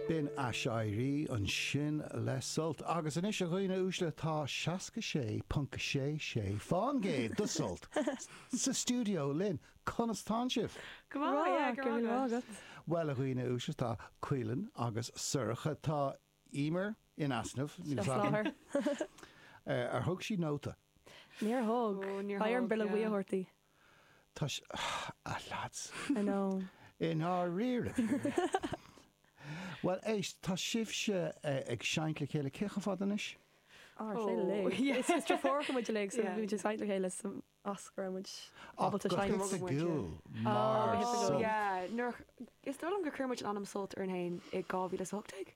B'in aiséirí ansin le Sult. Agus anois, a dhaoine uaisle, tá 66.66 fán gcéad do Sult sa stiúideo linn. Conas tánn sibh? Go maith, yeah, go raibh maith agat. Bhuel, a dhaoine uaisle, tá Caoilinn agus Sorcha, tá Emer in easnamh, ní flagging, ar thug sí nóta? Níor thug. Níor thug, yeah. Beidh orm bileog bhuí a thabhairt di. Tá sé, ah lads, I know. i ndáiríre, bhuel éist, tá sibhse ag seinnt le chéile, cé chomh fada anois? Ó, ar sé le, is is triúr deirfiúr muid uilig so bhí muid ag seinnt le chéile so as go raibh muid ábalta seinnt. Ach go hoifigiúil mar Sult. Yeah, nuair, is dóigh liom gur chuir muid an ainm Sult orainn fhéin i 2018?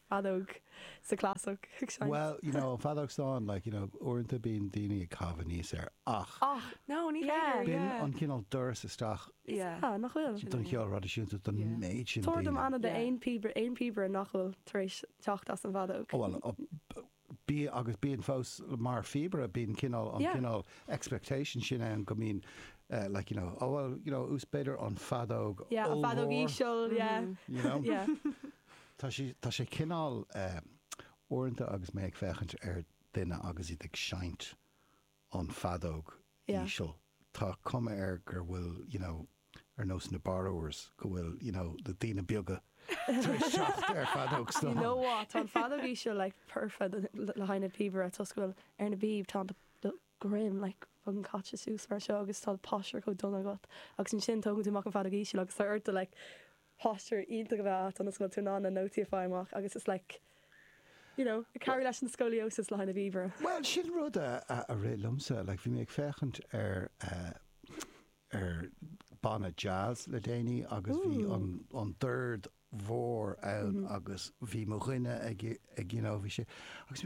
fheadóg sa chlasach ag seinnt. Bhuel, you know, feadóg stáin, like, you know, uaireanta bíonn daoine ag caitheamh aníos air ach. Ach, no, ní féidir, yeah. B'in an cineál doras isteach. Is ea, nach bhfuil? Don cheol thraidisiúnta, don méid sin daoine. Tabhair dom ainm d'aon píobaire nach bhfuil tar éis teacht as an bhfeadóg. Ó, bhuel, bhí agus bíonn fós mar phíobaire, bíonn cineál, an cineál expectation sin ann go mbíonn like, you know, oh well, you know, flute b'fhéidir an feadóg ollmhór, an feadóg íseal, you know, tá sé, tá sé cineál uaireanta agus mé ag féachaint ar duine agus iad ag seinnt, an feadóg Yeah. íseal. Tá cuma air gur bhfuil, you know, ar nós na Borrowers, go bhfuil, you know, na daoine beaga tar éis teacht ar feadóg stáin. You know what, tá an feadóg íseal like perfect le haghaidh na píobaire toisc go bhfuil ar na bpíb tá do, do dhroim like fucking caite suas mar seo agus tá do posture chomh dona agat agus ansin tógann tú amach an feadóg íseal agus tá ortsa like posture iontach a bheith agat ionas go bhfuil tú in ann na nótaí a fáil amach agus it's like you know ag cabhrú leis an scoliosis le haghaidh na bpíobaire. Bhuel sin rud a rith liomsa like bhí mé ag féachaint ar ar banna jazz le déanaí agus bhí an an dord mhór ann agus bhí mo dhuine ag ag you know bhí sé agus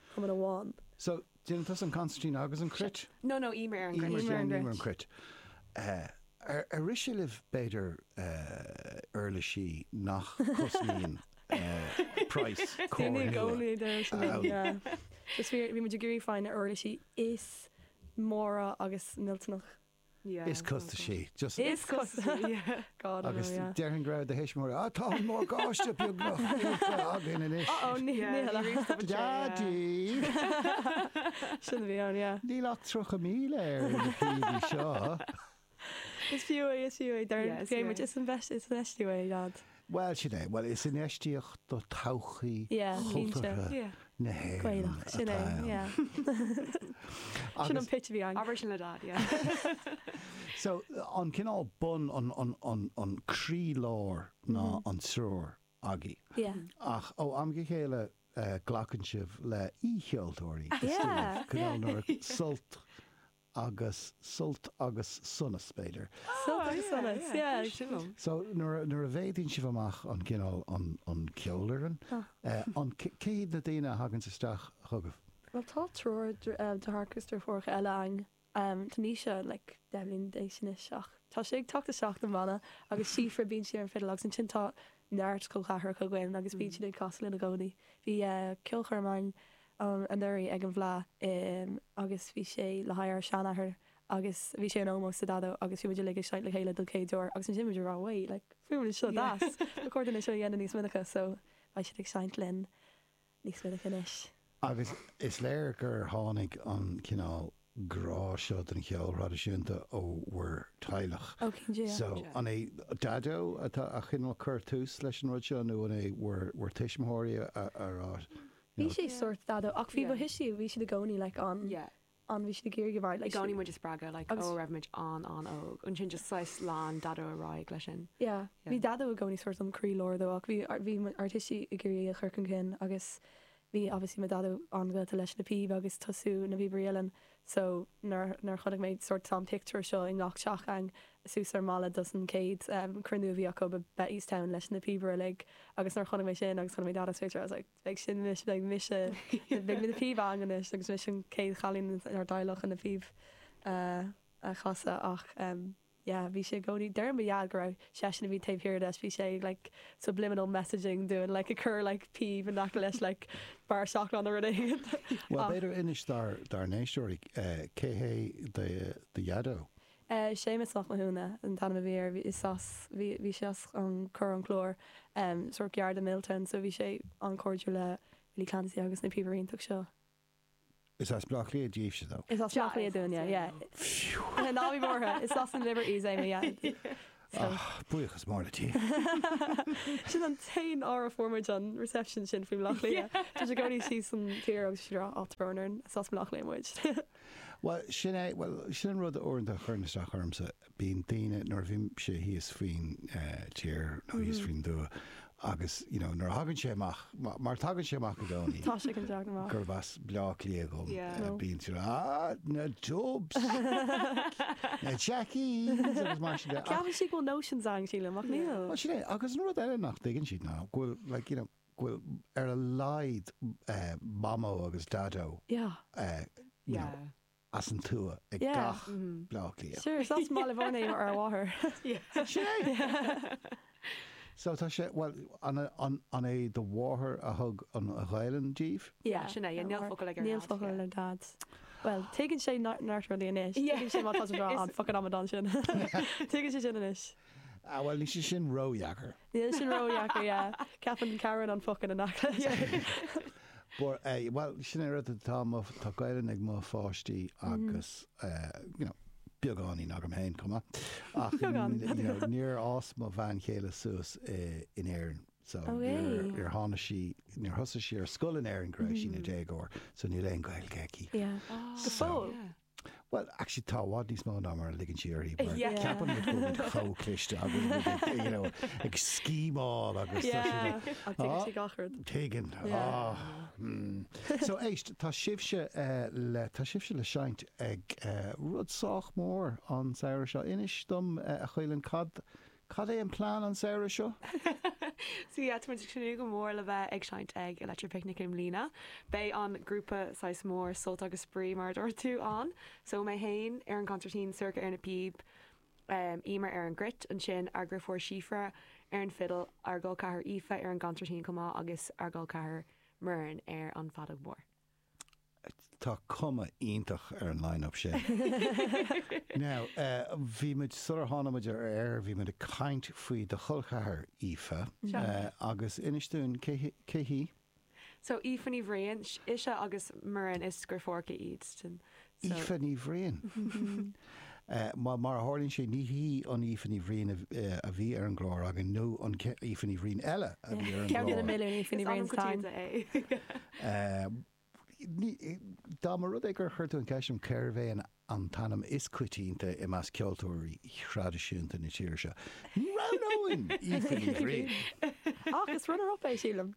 chumann amháin. So, déanann tusa an concertina agus an cruit? No, no, Emer ar an gcruit. Emer ar an gcruit. Emer an cruit. Ar rith sé libh, b'fhéidir, uirlisí nach gcosnaíonn praghas Corolla a fháil? Bhí muid ag iarraidh fáil ar na huirlisí is móra agus millteanach. Is costasaí. Is costasaí. Agus déarfainn go raibh do thuismitheoirí, ah, tá an morgáiste beagnach buailte againn anois. Oh oh, ní hea. Daidí! Sin a bhí ann, yeah. Níl ach tríocha míle air ar na píobaí seo. Is fiú é, is fiú é. Mar a deir muid, is infheistiú é, leaid. Bhuel, sin é. Bhuel, is infheistíocht do todhchaí chultúrtha na hÉireann atá ann. Sin an pitch a bhí ann. Abair sin le Dad, yeah. So, an cineál bun, an croí-lár ná an triúr agaibh. Yeah. Ach ó am go chéile glacann sibh le aoi-cheoltóirí, is dóigh, cineál nuair, sult, agus sult agus sonas, b'fhéidir. Sult agus sonas, yeah. So nuair a mhéadaíonn sibh amach an cineál an cheolfhoireann, an, cé hiad na daoine a thaganns isteach chugaibh? Bhuel tá triúr deartháireacha agus deirfiúracha eile a'm, tá Naoise like deich mbliana d'aois anois ach tá sé ag teacht isteach sa bhanna agus Síofra bíonn sí ar an fiddle agus ansin tá neart col ceathracha againn agus bíonn siad ag casadh linn i gcónaí. Bhí eh ceolchoirm ann an anuraidh ag an bhFleadh agus bhí sé le haghaidh ár seanathair agus bhí sé in ómós sa Daideo agus bhí muid uilig ag seinnt le chéile don chéad uair agus ansin muid ag rá wait like fuaimníonn seo deas ba chóir dúinn é seo a dhéanamh níos minice so beidh siad ag seinnt linn níos minice anois. Agus is léir gur tháinig an cineál grá seo don cheol traidisiúnta ó bhur teaghlach. Ó, céad faoin gcéad, So, an é Daideo atá a' cineál cur tús leis an rud seo nó an é bhur, bhur tuismitheoirí a, a rá, you Bhí know, sé Yeah. sórt Daideo ach bhí, ba Yeah. tuistí, bhí siad i gcónaí like an, Yeah. an, bhí siad ag iarraidh a bheith, I like gcónaí siad, muid a' spreagadh like agus- ó raibh muid an, an óg. Ansin just saghas lean Daideo ar aghaidh leis sin. yeah, Yeah. bhí Daideo i gcónaí sórt an croí lár dó ach bhí, bhí mo- ár dtuistí ag iarraidh é a chur chun cinn agus Bhí obviously mo Dhaideo an-ghafa leis na píb agus tosú na píobairí uilleann so nuair a chonaic mé sórt an pictiúr seo i ngach teach ann suas ar an mballa dos an chéad cruinniú a bhí acu i Bettystown leis na píobairí uilig agus nuair a chonaic mé sin agus chonaic mé Daideo sa phictiúr I was like beidh sin anois beidh mise beidh mé na píb a fháil anois agus mise an chéad chailín ón teaghlach chun na píb a chasadh ach eh yeah bhí sé i gcónaí deireann mo dhaid go b'é seisean a bhí taobh thiar de bhí sé ag like subliminal messaging dúinn like ag cur like píb in aice leis like barra seacláide nó rud éigin Bhuel ach b'fhéidir inis dár dár n-éisteoirí eh cé hé do dhaideo? eh Séamus Mac Mathúna an t-ainm a bhí air bhí is as bhí bhí sé as an Chorr an Chláir em sórt gar do Miltown so bhí sé an-chairdiúil le Willie Clancy agus na píobairí iontach seo. Is as Bleá Cliath daoibhse, nó? Is as Bleá Cliath dúinn, yeah, yeah. Ná bí buartha, is as an Liberties é mo dheaid. Ach buíochas mór le Dia. Sin an t-aon uair a fuair muid an reception sin faoi Bleá Cliath. Bhí muid i gcónaí síos an tír agus muid ag rá, 'Á, tá brón orainn, is as Bleá Cliath muid. Bhuel, sin é, bhuel, sin an rud uaireanta a chuireann isteach ormsa. bíonn daoine, nuair a bhímse thíos faoin tír nó thíos faoin dtuath agus you know nuair a thagann sé amach, mar tagann sé amach i gcónaí, tá sé ag teacht amach, gurb as Bleá Cliath dhom, bíonn tú ah na Dubs! na Jackies agus mar sin de. Ceapann siad go bhfuil notions ann sílim ach níl. Bhuel sin é agus an rud eile nach dtuigeann siad ná go bhfuil like you know go bhfuil ar a laghad mamó agus dadó, yeah, you know, as an tuath ag gach Bleá Cliathach. Sure, is as an mBaile Bán í ár máthair. Is ea! So tá sé, bhuel, an é do mháthair a thug an Ghaelainn daoibh? Yeah, sin é, yeah, níl focal ag ár nDaid. Níl focal ag Daid. Bhuel, tuigeann sé neart rudaí anois. Tuigeann sé má tá tú ag rá an focal amadán sin. Tuigeann sé sin anois. Ah, bhuel, níl sé sin ródheacair. Níl sin ródheacair, yeah. Ceapann Cathair an focal ina cheann leis é. But eh, bhuel, sin é an rud, tá mo, tá Gaelainn ag mo pháistí agus eh, you know, beagáinín agam fhéin, chomh maith. Ach Beagán, n- you know, níor fhás mo bhean chéile suas i, in Éirinn. So Oh, é? níor, níor tháinig sí, níor thosaigh sí ar scoil in Éirinn go raibh sí ina déagóir. So níl aon Ghaeilge aici. Yeah. Go So, fóill? Yeah. Bhuel, actually tá i bhfad níos mó ná mar a ligeann sí uirthi mar Yeah. ceapann muid go bhfuil muid chomh cliste agus go bhfuil muid ag, you know, ag scheme-áil agus tá sé- Yeah. Ach tuigeann sí gach rud. Tuigeann. Yeah. Ah, hmm. So éist, tá sibhse eh, le, tá sibhse le seinnt ag eh, rud sách mór an samhradh seo. Inis dom eh, a Chaoilfhinn, cad, Cad é an plean an samhradh seo? Sea, tá muid ag tnúth go mór le bheith ag seinnt ag Electric Picnic i mbliana. Beidh an grúpa saghas mór Sult agus Spraoi, mar a dúirt tú, ann. So, mé fhéin ar an gconsairtín, Sorcha ar na píb, Emer ar an gcruit, ansin ár ndriofúr Síofra ar an fidil, ár gcol ceathrair Aoife ar an gconsairtín chomh maith agus ár gcol ceathrair Muireann ar an feadóg mhór. Tá cuma iontach ar an line-up sin. Now, bhí muid, sular tháinig muid ar aer, bhí muid ag caint faoi do chol ceathrair, Aoife, agus inis dúinn, cé, cé hí? So, Aoife Ní Bhriain, ise agus Muireann, is driofúracha iad, Aoife Ní Bhriain. Mar a tharlaíonn sé, ní hí an Aoife Ní Bhriain a bhí ar an gclár againn nó an Aoife Ní Bhriain eile a bhí ar an gclár. Ceann de na milliúin Aoife Ní Bhriain atá ann. Dá mba rud é gur chuir tú an cheist orm cérbh é an t-ainm is coitianta i measc ceoltóirí thraidisiúnta na tíre seo, ní roghnóinn Aoife Ní Bhriain! Ach is runner-up é, sílim.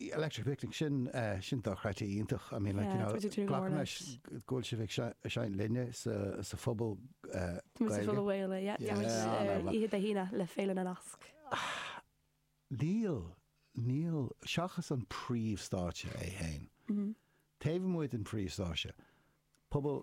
Electric Picnic, sin, sin do chreidte iontach, I mean, like, you know, glacaim leis go bhfuil sibh ag seinnt linne sa, sa Phuball Gaeilge. Tá muid full away le, yeah, tá muid ar oíche Dé hAoine le Féile na Nasc. Níl, níl, seachas an príomhstáitse é fhéin. Taobh amuigh den phríomhstáitse, Puball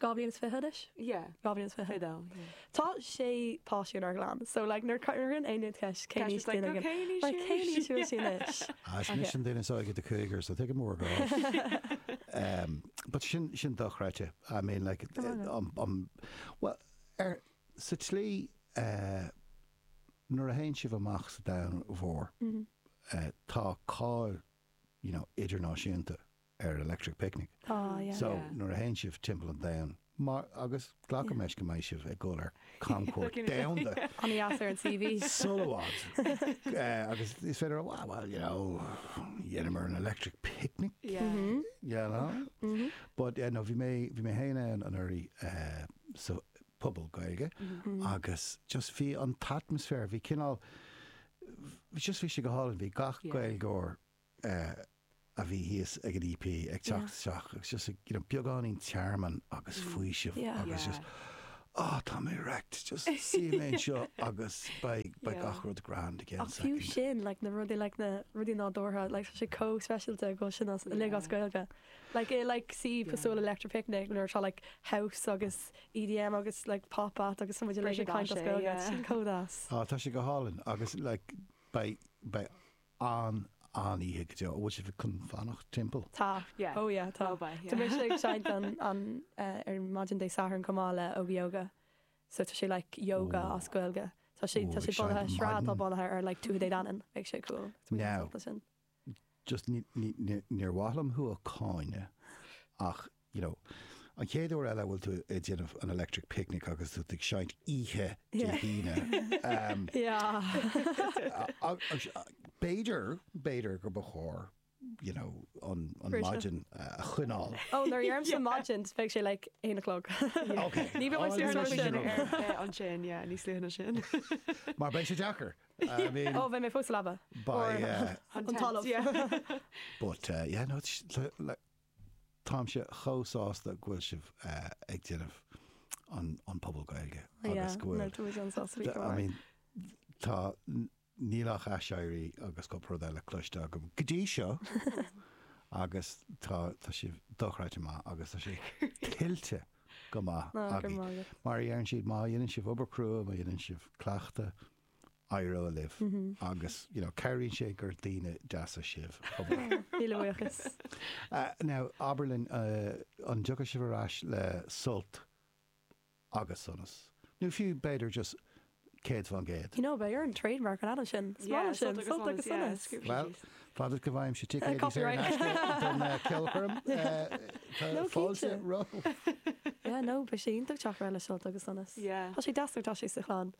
Dhá bhliain is fiche anois? Yeah. Dhá bhliain is fiche. Fiche a dó, yeah. Tá sé páiste inár gclann, so like nuair a chuireann aon duine ceist cén aois duine againn ceist, it's like, cén aois a bhfuil sí anois? Is í an duine is óige de cúigear, so take one more year off. But sin, sin dochreidte, I mean like, um, well, sa tslí, eh, nuair a théann sibh amach sa domhan mhór, eh, tá cáil, you know, idirnáisiúnta. ar Electric Picnic. Ah, yeah. So, nuair a théann sibh timpeall an domhain, mar, agus glacaim leis go mbeidh sibh ag dul ar camchuairt domhanda. An-deas ar an CV. Sara i bhfad. Eh, agus is féidir a rá, ah, well, you know, dheineamar an Electric Picnic. Yeah. You know? But, eh, no, bhí mé, bhí mé fhéin ann anuraidh, eh, sa phuball Gaeilge agus just bhí an t-atmaisféar, bhí cineál, just bhí sé go hálainn, bhí gach Gaeilgeoir, a bhí thíos ag an EP ag teacht isteach agus just ag you know beagáinín tearmainn agus faoiseamh agus just ah tá mé wrecked just suífidh mé anseo agus beidh beidh gach rud grand again. Ach fiú sin, like, na rudaí, like, na rudaí nádúrtha, like, tá sé comh speisialta go bhfuil sin uilig as Gaeilge. Like, i, like, suíomh cosúil le Electric Picnic nuair atá, like, house agus EDM agus, like, pop acts agus tá muid ag caint as Gaeilge, yeah. sin comh deas. Ah tá sé go hálainn agus, like, beidh beidh ann an oíche go deo. An bhfuil sibh ag fanacht timpeall? Tá. Yeah. Oh yeah, tá. Oh bye, yeah. Tá mise ag seinnt an an eh, ar maidin Dé Sathairn chomh maith le Óga Yoga. So tá sé like yoga Ooh. as Gaeilge. Tá sé Ooh, tá sé bunaithe, sraith atá bunaithe ar like Tuatha Dé Danann. Beidh sé cool. Tá mé Now. sampla sin. Just ní- ní- ní- níor mhaith liom thú a cháineadh ach you know, an chéad uair eile a bhfuil tú ag déanamh an electric picnic agus tú ag seinnt oíche Dé hAoine. Um, B'fhéidir, b'fhéidir gur ba chóir you know, an, an maidin a choinneáil. Ó, oh, nuair a deirim ar maidin, beidh sé like aon o'clock. Okay. Ní bheidh muid ar sin an sin, yeah, ní slíhanna sin. Mar beidh sé deacair. I mean... Ó, beidh mé fós labha. By, uh, an talamh. But, uh, yeah, no, Táimse chomh sásta go bhfuil sibh ag déanamh an puball Gaeilge agus go bhfuil, tá, níl ach aiséirí agus cúpla rud eile cloiste agam go dtí seo agus tá sibh dochreidte maith agus tá sé tuillte go maith agaibh. Mar a deireann siad, má dhéanann sibh obair crua, má dhéanann sibh cleachtadh, éireoidh libh agus you know cabhraíonn sé gur daoine deasa sibh chomh maith. Míle buíochas. Now abair linn an dtiocfaidh sibh ar ais le sult agus sonas nó fiú b'fhéidir just céad faoin gcéad? You know beidh orainn trademark an ainm sin is maith liom sin, sult agus sonas. Bhuel fad is go bhfaighimse ticéid saor in aisce don cheolchoirm tá fáilte romhat. Yeah no beidh sé iontach teacht ar ais le sult agus sonas. Yeah tá sé deas nuair atá sé sa chlann.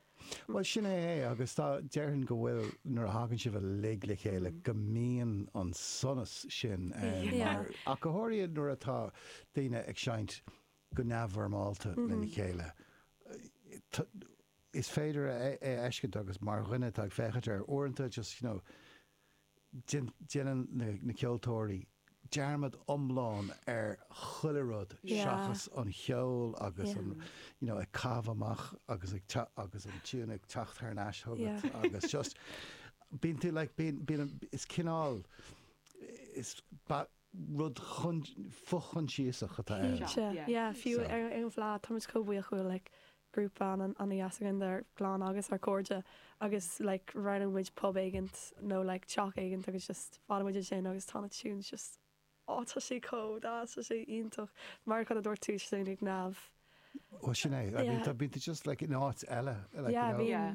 Bhuel, sin é é, agus tá, déarfainn go bhfuil, nuair a thagann sibh uilig le chéile, go mbíonn an sonas sin ann mar, ach go háirithe nuair atá daoine ag seinnt go neamhfhoirmeálta lena chéile, is féidir é a fheiscint agus mar dhuine atá ag féachaint air, uaireanta just, you know, Déanann na ceoltóirí dearmad iomlán ar chuile rud seachas an cheol agus an, you know, ag caitheamh amach agus ag teacht agus an tiúin ag teacht thar n-ais chugat agus just bíonn tú like bíonn bíonn an is cineál is ba rud fo-chomhfhiosach atá air. Cinnte, yeah, fiú ar an bhfleadh tá muid chomh buíoch uaidh like grúpa ana-dheas againn dár gclann agus ár gcairde agus like roghnaíonn muid pub éigint nó like teach éigint agus just fanann muid ansin agus tá na tunes just oh tá sé chomh deas tá sé iontach mar a dúirt tú just like neamh Well sin é I mean yeah tá bíonn tú just like in áit eile like yeah you know. yeah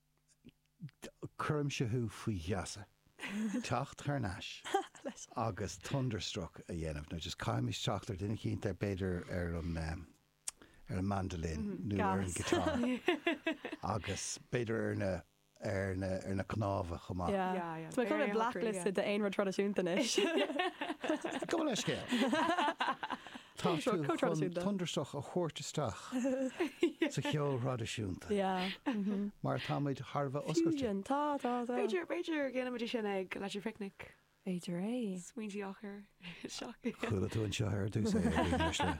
Cuirimse thú faoi gheasa teacht thar n-ais agus Thunderstruck a dhéanamh, nó just caithfimid teacht ar duine eicínt ar b'fhéidir ar an ehm, ar an mandolin nó ar an guitar agus b'fhéidir ar na, ar na, ar na cnámha chomh maith. Yeah, yeah, yeah. Tá mé chun mé blacklist de aon rud traidisiúnta anois. Gabh mo leithscéal. Tá tú chun Thunderstruck a thabhairt isteach sa cheol thraidisiúnta mar tá muid thar a bheith oscailte. Tá, tá, tá. B'fhéidir, b'fhéidir déanfaimid é sin ag Electric Picnic. B'fhéidir é. Smaointe eochair isteach. Chuala tú anseo ar dtús é a dhaoine uaisle.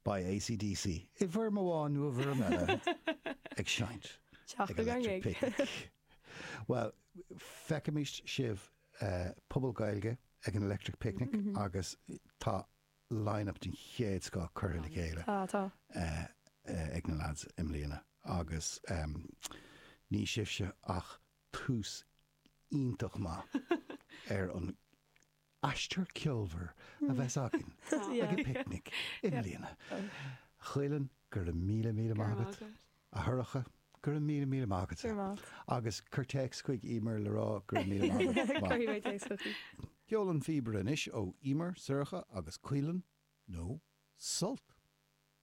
Beidh AC/DC, i bhfoirm amháin nó i bhfoirm eile, ag seinnt ag Electric Picnic. Bhuel, feicfimid sibh Puball Gaeilge ag an Electric Picnic agus tá line-up den chéad scoth curtha le chéile ag na lads i mbliana agus níl sibhse ach tús iontach maith ar an aistear ceolmhar a bheas againn ag an bPicnic i mbliana. A Chaoileann, go raibh míle míle maith agat. A Shorcha, go raibh míle míle maith agat. Go raibh maith agat. Agus cuir téacs chuig Emer le rá go raibh míle maith agat chomh maith. Cuirfidh mé téacs chuici. Ceol an phíobaire anois ó Emer, Sorcha agus Caoileann, nó Sult!